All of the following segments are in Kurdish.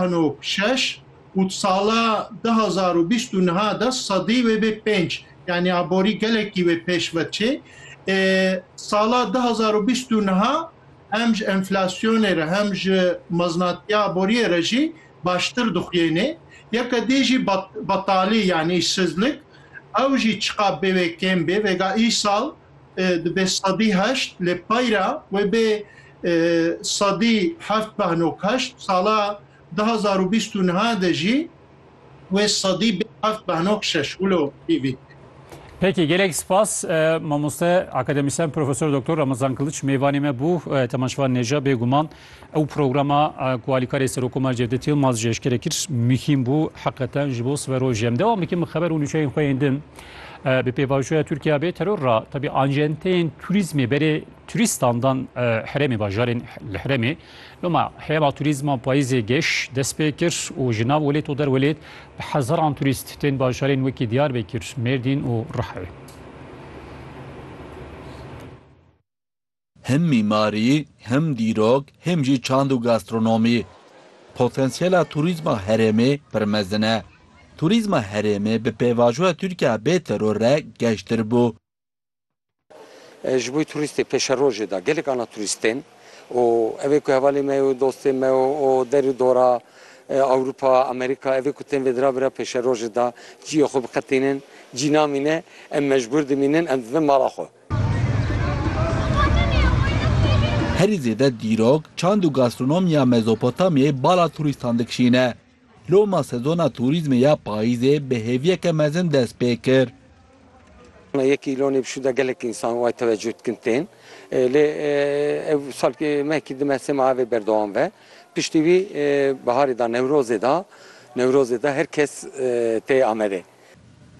Ano şeş û di sala du hezar û bîst û niha de sedî wê bê pênc, yanî aborî gelekî wê pêş ve çê. Ê sala du hezar û bîst û niha hem ji enflasyonê re hem ji meznatiya aboriyê re jî baştir dixuyênê. Yeke dî jî betalî yanî îşsizlik ew jî çiqab bê wê kêm bê vêga îsal dibê sedî heşt lê payra wê bê sedî heft beh nok heşt sala du hezar û bîst û niha de jî wê sedî bê heft beh nok şeş wilo pîvî dike. Peki gelek spas mamoste akademisyen profesör doktor Ramazan Kılıç meyvanê me bû Teman Şivan Neca bêguman Ew programa ku alîkarê Serokomar Cevdet Yilmaz ji eşkere kir muhîm bû heqeten ji bo sibe roj em dewam bikin bi xeber û nûçeyên xwe yên din. Bi pêvajoya Tirkiya bê teror ra tevî ancenteyên turîzmê berê turîstan dan herêmê bajarên li herêmê. Loma heyema turîzma payîzê geş dest pê kir û ji nav welêt û derwelêt bi hezaran turîst tên bajarên wekî Diyarbekir, Mêrdîn û Rihayê. Him mîmarî, him dîrok, him jî çand û gastronomî. Potansiyela turîzma herêmê pir mezin e. Turîzma herêmê bi pêvajoya Tirkiya bê teror re geştir bû. Ji bo turîstê pêşerojê de gelek ana turîst tên û ev ê ku hevalê me û dostê me û der û dora Ewropa, Amerîka ev ê ku tên vêdira bira pêşerojê de ciyê xwe biqetînin. Cî namîne em mecbûr dimînin em dibin mala xwe. Herî zêde dîrok, çand û gastronomiya Mezopotamyayê bala turîstan dikişîne. Loma sezona turîzmê ya payîzê bi hêviyeke mezin dest pê kir. Me yekî lonê bişû de gelek însan way tewecuh dikin tên. Lê ev sal mehkî di mersema evê berdewam ve. Piştî wî biharê de Newrozê de Newrozê de her kes tê Amedê.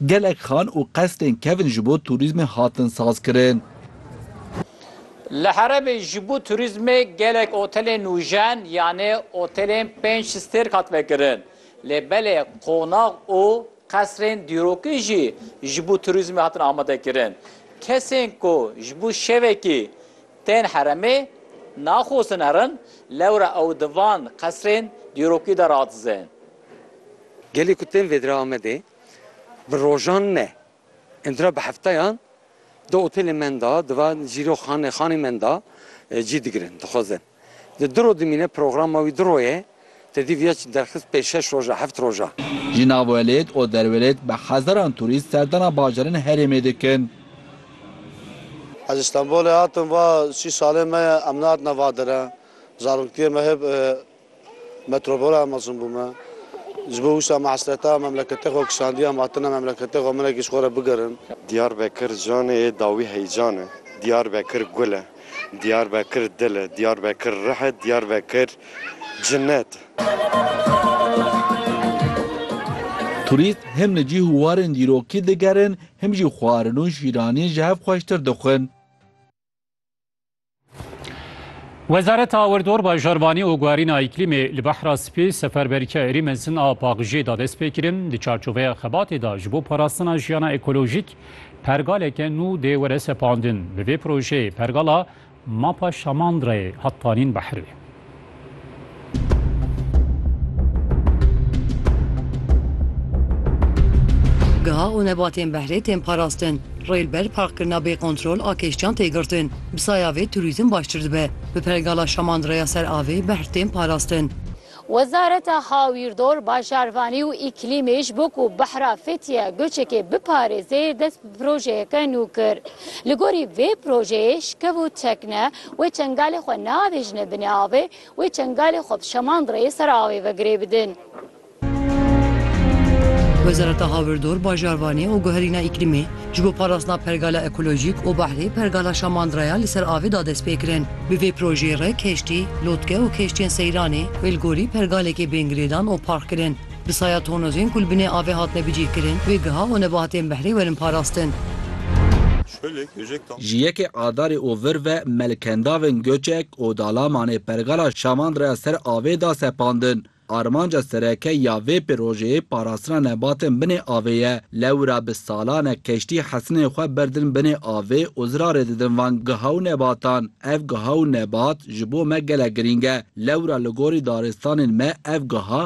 Gelek xan û qesrên kevn ji bo turîzmê hatin sazkirin. Li herêmê ji bo turîzmê gelek otelên nûjen yanê otelên pênc stêrk hat vekirin. Lê belê qonax û qesrên dîrokî jî ji bo turîzmê hatin amadekirin. Kesên ku ji bo şevekî tên herêmê naxwestin herin, lewra ew di van qesrên dîrokî de radizin. Gelê ku tên vêdire Amedê bi rojan ne, îndira bi hefteyan di otelê menda, di van jîro xane xanê menda cî digirin, dixwezin. Di diro dimîne, programa wî diro ye, tedî viya çi derxist pê şeş roja, heft roja. Ji navwelêt û derwelêt bi hezaran turîst serdana bajarên herêmê dikin. Ez ji Stenbolê hatim va sî salên me ye, em nehatine va dire, zaroktiyê me hêb. Metropola mezin bû me. Ji bo wisa me hesreta memleketê xwe kişandiye em hatine memleketê xwe minekî ji xwe re bigerin. Diyarbekir canê yê dawî heycan e. Diyarbekir gul e. Diyarbekir dil e. Diyarbekir rih e. Diyarbekir cinet e. Turîst him li cîh û warên dîrokî digerin him jî xwarin û şîraniyê ji hev xweştir dixwin. Wezareta Awerdor Bajarbanî û Guherîna Îklîmê li Behra Spî seferberîka êrî mezin a paqijê da dest pê kirin. Di çarçoveya xebatê da ji bo parastina jiyana ekolojîk pergaleke nû dê were sepandin. Bi vê projeyê pergala Mapa Şamandrayê hat tanîn behrê. Giha û nebatên behrê tên parastin. Rêlber parkkirina bê kontrol a kêştiyan tê girtin. Bi saya vê turîzm baştir dibe. Bi pergala şamandireya ser avê behr tên parastin. Wezareta Hawîrdor, Bajarvanî û Îklîmê ji bo ku behra Fethiye Goçekê biparêzê dest bi projeyeke nû kir. Li gorî vê projeyê şkev û tekne Wê çengalê xwe neavêjine binê avê, wê çengalê xwe bi şemandireyê ser avê ve girê bidin. Wezareta Hawirdor, Bajarvanê û Guherîna Îklîmê ji bo parastina pergala ekolojîk û behrê pergala şemandireya li ser avê da dest pê kirin. Bi vê projeyê re keştî, lotke û keştiyên seyranê wê li gorî pergalekê bên girêdan û park kirin. Bi saya tonozên ku li binê avê hatine bicîhkirin, wê giha û nebahatên behrê werin parastin. Ji yekê Adarê û vir ve melkendavên Göçek û Dalamanê pergala Şaman re ser avê da sepandin. Armanca sereke ya vê pirojeyê parastina nebatên binê avê ye. Lewra bi salan e keştî hesinên xwe berdin binê avê û zirarê didin van giha û nebatan. Ev giha û nebat ji bo me gelek girîng e. Lewra li gorî daristanên me ev giha